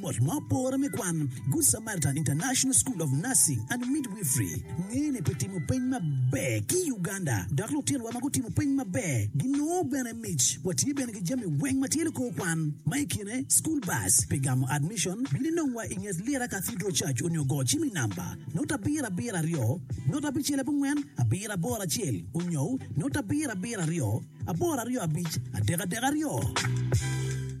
Mot ma opore me kwan, Good Samaritan International School of Nursing and Midwifery ngene pi timo peny maber ki i Uganda, dok lutinowa ma gutimo peny maber ginongo bene mic. Watye bene ki jami weng ma tye likor kwan, ma i kine school bus. Pi gamo admission, bin inongwa i nget Lira Cathedral Church onyo go cim i namba not abiro abiro aryo not abicel abongwen abiro aboro acel onyo not abiro abiro aryo aboro aryo abic adek adek aryo.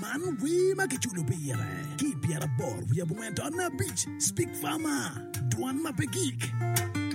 Man wer ma kiculo pire ki i pyeraboro wiye abongwen to nabicSpeak Farmer, Dwan ma pe gik.